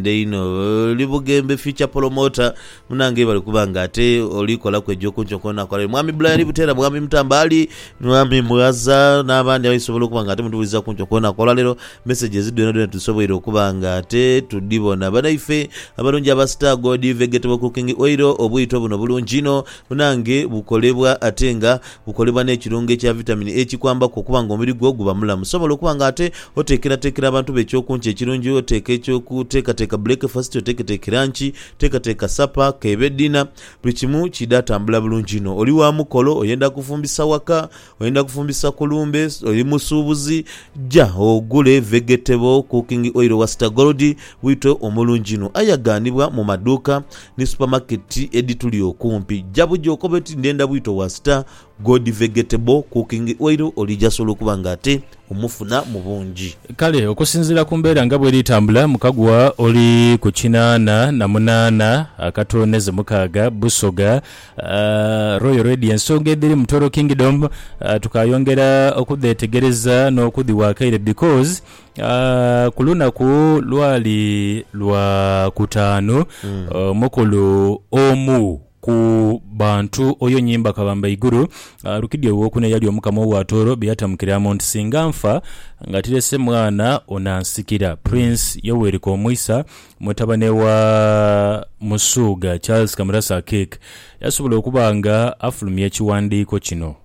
Nkwende inho oli bugembe future promoter munange webale kuba nga ate oli kolaku ejo kuncho nkona akolerayo mwami Bula yali butera mwami mutamba Ali mwami mughaza nabandi abayi sobola okuba nga ate mutubuliza kuncho kona akola lero messages dhona dhona tusoboire okuba nga ate tudhibona banaife abalungi aba star gold vegetable cooking oil obwito buno bulungi inho munange bukolebwa ate nga Gukolebwa n'ekirungo ekya vitamini E kikwambaku okuba nga omubiri gwo guba mulamu. Sobola okuba nga ate oteekerateekera abantu bo ekyokunkya ekirungi. Oteeka eky'okuteekateeka bulekefasiti, oteeketeeke lanki, oteekateeka sapa, k'ebe ddina, buli kimu kiidha tambula bulungi inho. Oli wa mukolo, oyenda kufumbisa waka, oyenda kufumbisa ku lumbe, oli musuubuzi, ja ogule Vegetable Cooking Oil owa Star Gold, bwito omulungi inho. Aye aghanibwa mu maduuka ni supamaketi edhituli okumpi. Ja buja okobe oti, Ndhenda bwito wa Star Gold Vegetable Cooking Oil oli jasobola okuba nga ate omufuna mu bungi. Kale okusinziira ku mbeera nga bweri etambula, Mukagwa oli ku kinaana na munaana akatooneze mukaaga, Busoga. Royal Radio ensonga edhiri mu Toro Kingdom tukaayongera okudheetegereza n'okudhiwa akaire because Ku lunaku lwali lwa kutaanu, omukulu omu ku bantu oyo nyi mbakabamba iguru alukidhi owokuna eyali omukama owa Tooro bye yatamukiramu nti, Singa nfa nga tirese mwana onansikira. Prince Yoweri Komuisa, mutabane wa Musuuga Charles Kamurasa Akiik, yasobola okuba nga afulumya ekiwandiiko kino.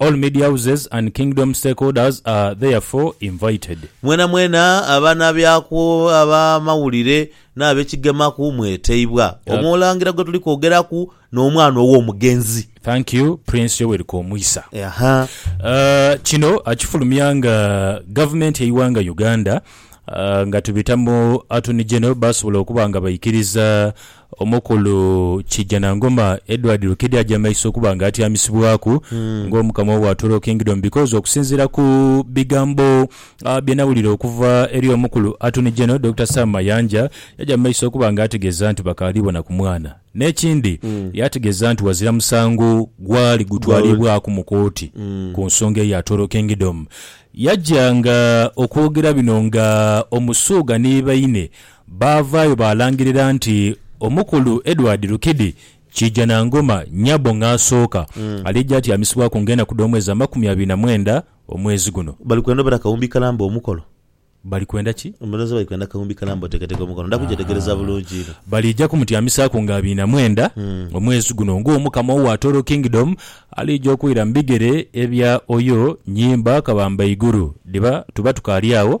All media houses and kingdom stakeholders are therefore invited. Mwenamwena abanabyaku, abamawulire, n'abekigemaku mweteibwa. Omu Olangira gwe tuli kwogeraku n'omwana ow'omugenzi. Thank you Prince Yoweri Komwisa. Kino akifulumya nga gavumenti y'eighanga Uganda nga tubita mu Attorney General basobola okuba nga baikiriza Omukulu Kijanangoma Edward Lukidi aja mu maiso okuba nga atyamisibwaku nga Omukama owa Toro Kingdom because okusinziira ku bigambo bye nawulira okuva eri Omukulu Attorney General Dokita Sam Mayanja yaja mu maiso okuba nga ategeeza nti bakaali bona ku mwana. N'ekindi yategeeza nti wazira musango gwali gutwalibwaku mu kooti ku nsonga eya Toro Kingdom. Yaja nga okwogera bino nga Omusuuga ni baine Baavaayo baalangirira nti Omukulu Edward Rukidi Kiijanangoma, Nyabo Ng'asooka, aliija atyamisibwaku nga enaku dh'omwezi amakumi abiri na mwenda omwezi guno. Bali kwenda obera kawumbi kalamba omukolo. Bali kwenda ki? Omulonzi bali kwenda kawumbi kalamba oteeketeke omukolo. Nda kugyetegereza bulungi inho. Baliija kumutyamisaaku nga abiri na mwenda omwezi guno nga Omukama owa Atoro Kingdom aliija okwira mu bigere ebya Oyo Nyimba Kabambaiguru. Dhiba tuba tukaali agho.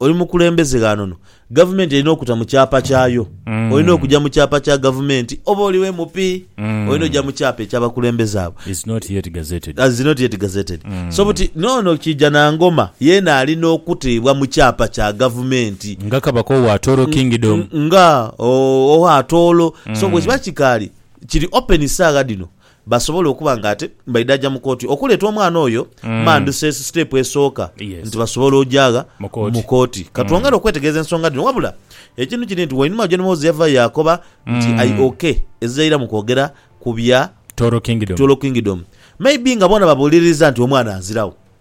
Oli mukulembeze ghano no. Gavumenti erina okuta mu kyapa kyayo. Olina okuja mu kyapa kya gavumenti. Oba oli MP, olina oja mu kyapa ekya bakulembeze abo. Is not yet gazetted. Is not yet gazetted. So buti n'ono Kijanangoma yeena alina okutebwa mu kyapa kya gavumenti. Nga Kabaka owa Atooro Kingdom. Nga owa Atooro. So bwekiba kikaali, kiri open saagha dhino, basobola okuba nga ate baidhaja mu kooti okuleeta omwana oyo, manduse siteepu esooka Yes. nti basobola ojaagha Mu kooti. mu kooti. Ka twongere okwetegereza ensonga dhino. Wabula ekintu kiri nti wainuma John Moze yavaayo yaakoba nti I OK ezizaira mu kwogera ku bya Toro Kingdom. Toro Kingdom. Maybe nga boona babuuliririza nti omwana aziragho.